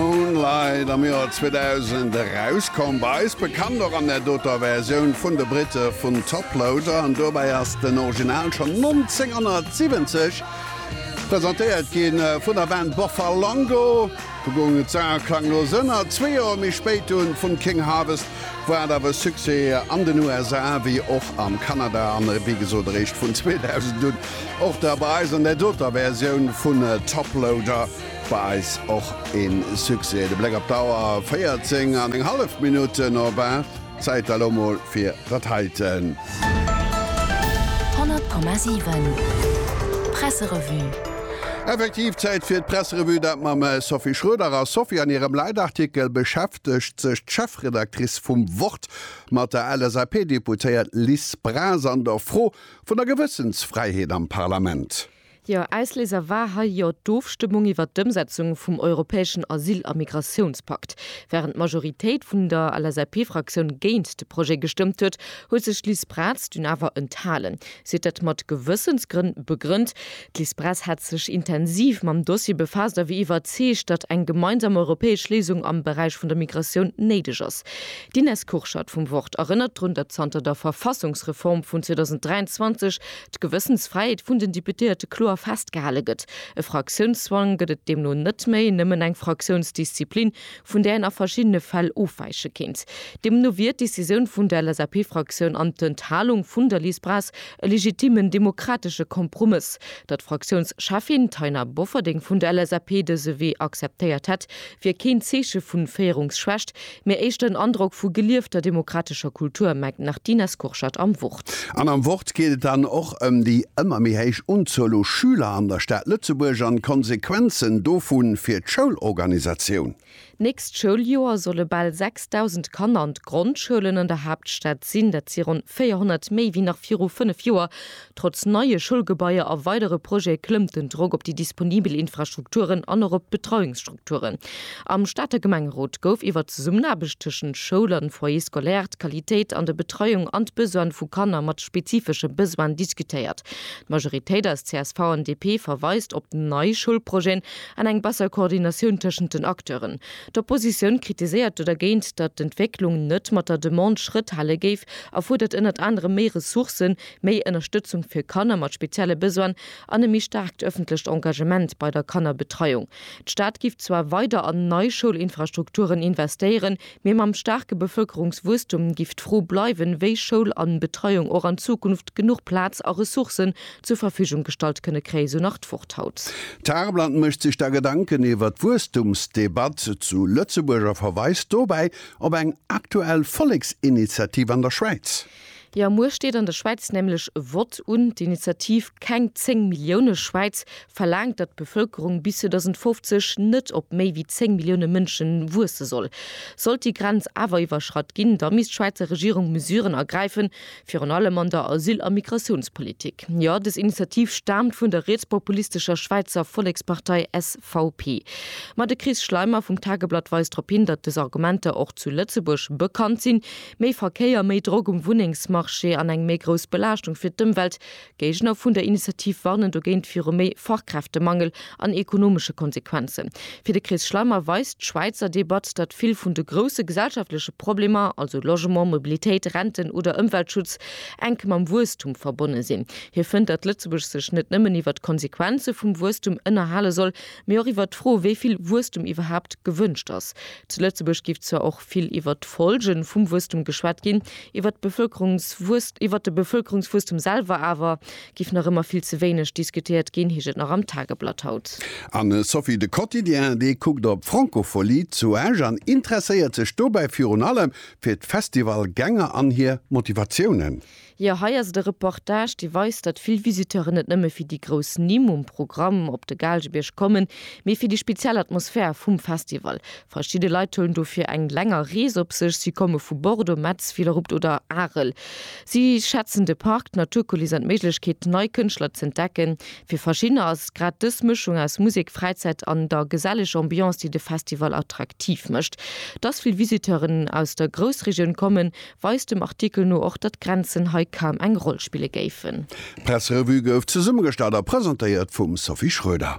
Moonlight am Joer 2000 erauskomm, bei eis bekannt och an der doter Versioun vun de Britte vun Toploader, an dobäi ass den Original schonn 1970 presentéiert gi vun der Band Boffalongo. Do goung et sauer klanglos ënner, zwee Joer méi spéit dunn vun King Harvest, wou hat awer e Succès an den USA wéi och am Kanada, an wéi gesot eréischt vun 2000 un och da bei eis an der doter Versioun vun Toploader. Bei eis och een Succès de Bléck op d'Auer, 14 an eng hallef Minutten op 8, Zäit elo mol fir dat heiten. 100,7 Presserevue. Effektiv Zäit fir d'Presserevue, dat mam Sophie Schroeder. A Sophie, an hirem Leitartikel beschäftegt sech d'Chefredactrice vum Wort mat der LSAP-Deputéiert Liz Braz an der Fro vun der Gewëssensfräiheet am Parlament. Jo, Ausléiser war hei jo d'Ofstëmmung iwwert d'Ëmsetzung vum europäeschen Asyl a Migratiounspakt. Wärend d'Majoritéit vun der LSAP-Fraktioun géint de Projet gestëmmt huet, huet sech d'Liz Braz dunn awer enthalen. Si huet dat mat Gewëssensgrënn begrënnt. D'Liz Braz hätt sech intensiv mam Dossier befaasst a wier iwwerzeegt, datt eng gemeinsam europäesch Léisung am Beräich vun der Migratioun néideg ass. D'Ines Kurschat vum Wort erënnert drun, datt zanter der Verfassungsreform vun 2023 d'Gewëssensfräiheet vun den Deputéierte kloer festgehale gëtt. E Fraktiounszwang gëtt et deemno net méi, nëmmen eng Fraktiounsdisziplin, vun där een a verschiddene Fäll ofwäiche kéint. Deemno wier d'Decisioun vun der LSAP-Fraktioun an d'Enthalung vun der Liz Braz e legitimen demokratesche Kompromëss. Datt d'Fraktiounscheffin Taina Bofferding vun der LSAP dëse Wee acceptéiert hätt, wier keen Zeeche vu Féierungsschwächt, Mir éischten en Androck vu geliefter demokratescher Kultur, mengt d'Martina Skurschat am Wort. An am Wort geet et dann och ëm déi ëmmer méi héich Unzuel u Schüler an der Stad Lëtzebuerg an d'Konsequenzen dovu fir d'Schoulorganisatioun. D'nächst Schouljoer solle bal 6.000 Kanner an d'Grondschoulen an der Haaptstad sinn. Dat si ronn 400 méi wéi nach viru fënnef Joer. Trotz neie Schoulgebaier a weidere Projete klëmmt den Drock op déi disponibel Infrastrukturen an och op d'Betreiungsstrukturen. Am Stater Gemengerot gouf iwwer d'Zesummenaarbecht tëschent Schoul an Foyer scolaire, d'Qualitéit an der Betreiung an d'Besoine vu Kanner mat spezifesche Besoinen diskutéiert. D'Majoritéit aus csv an DP verweist op nei Schoulprojeten an eng besser Koordinatioun tëschent den Acteuren. D'Oppositioun kritiséiert do dergéint, datt d'Entwécklung net mat der Demande Schrëtt hale géif a fuerdert ënnert anerem méi Ressourcen, Méi Ënnerstëtzung fir Kanner mat spezielle Besoine an e méi staarkt ëffentlecht Engagement bei der Kannerbetreiung. D'Stad giff zwar weider an nei Schoulinfrastrukturen investéieren, mee mam staarke Bevëlkerungswuesstum giff d'Fro bleiwen, wéi Schoul an Betreiung och an Zukunft genuch Plaz a Ressourcen zur Verfügung gestallt kënne kréien, sou nach d'Wort haut. D'Haarblatt mécht sech da Gedanken iwwert d'Wuesstumsdebatt zu Lëtzebuerg a verweist dobäi op eng aktuell Volleksinitiativ an der Schwäiz. Jo, muer steet an der Schwäiz nämlech e Vott un. D'Initiativ Keng 10 Millioune Schwäiz verlaangt, datt d'Bevëlkerung bis 2050 net op méi wéi 10 Millioune Mënsche wuesse soll. Sollt déi Grenz awer iwwerschratt ginn, da misst d'Schwäizer Regierung Mesuren ergräifen, virun allem an der Asyl a Migratiounspolitik. Jo, des Initiativ staamt vun der rietspopulistescher Schwäizer Vollekspartei SVP. Ma de Chris Schleimer vum Tageblatt weist drop hin, datt des Argumenter och zu Lëtzebuerg bekannt sinn. Méi Verkéier, méi Drock um Wunnengsmarché an eng méi grouss Belaaschtung fir d'Ëmwelt, Géigner vun der Initiativ warnen dogéint viru méi Fachkräftemangel an ekonomesche Konsequenzen. Fir de Chris Schleimer weist d'Schwäizer Debatt, datt vill vun de grousse gesellschaftleche Problemer, also Logement, Mobilitéit, Renten oder Ëmweltschutz, enk mam Wuesstum verbonne sinn. Hie fënnt, datt Lëtzebuerg sech net nëmmen iwwer d'Konsequenze vum Wuesstum ënnerhale soll, mee och iwwer d'Fro, wéi vill Wuesstum iwwerhaapt gewënscht ass. Zu Lëtzebuerg géif zwar ass vill iwwert d'Folge vum Wuesstum geschwat ginn. Iwwert d'Bevölkerungswuess iwwert de Bevölkerungswuesstum selwer awer giff nach ëmmer vill ze wéineg diskutéiert ginn, heescht et nach am Tageblatt haut. An Sophie, de Quotidien, dee kuckt op d'Francopholie zu Esch an interesséiert sech dobäi virun allem fir d'Festivalgänger an hir Motivatiounen. Jo, hei ass et e Reportage, dee weist, datt vill Visiteuren net nëmme fir déi grouss Nimm um Programm op de Gaalgebierg kommen, mee fir déi speziell Atmosphär vum Festival. Verschidde Leit huelen dofir eng länger Rees op sech, si komme vu Bordeaux, Metz, Villerupt oder Arel. Si schätzen de Park, d'Naturkuliss an d'Méiglechkeet, nei Kënschtler z'entdecken. Fir verschiddener ass et grad dës Mëschung aus Musek, Fräizäit an der geselleger Ambiance, déi de Festival attraktiv mécht. Datt vill Visiteuren aus der Groussregioun kommen, weist dem Artikel no och, datt Grenzen hei kaum eng Roll spille géifen. D'Presserevue gouf zesummegestallt a presentéiert vum Sophie Schröder.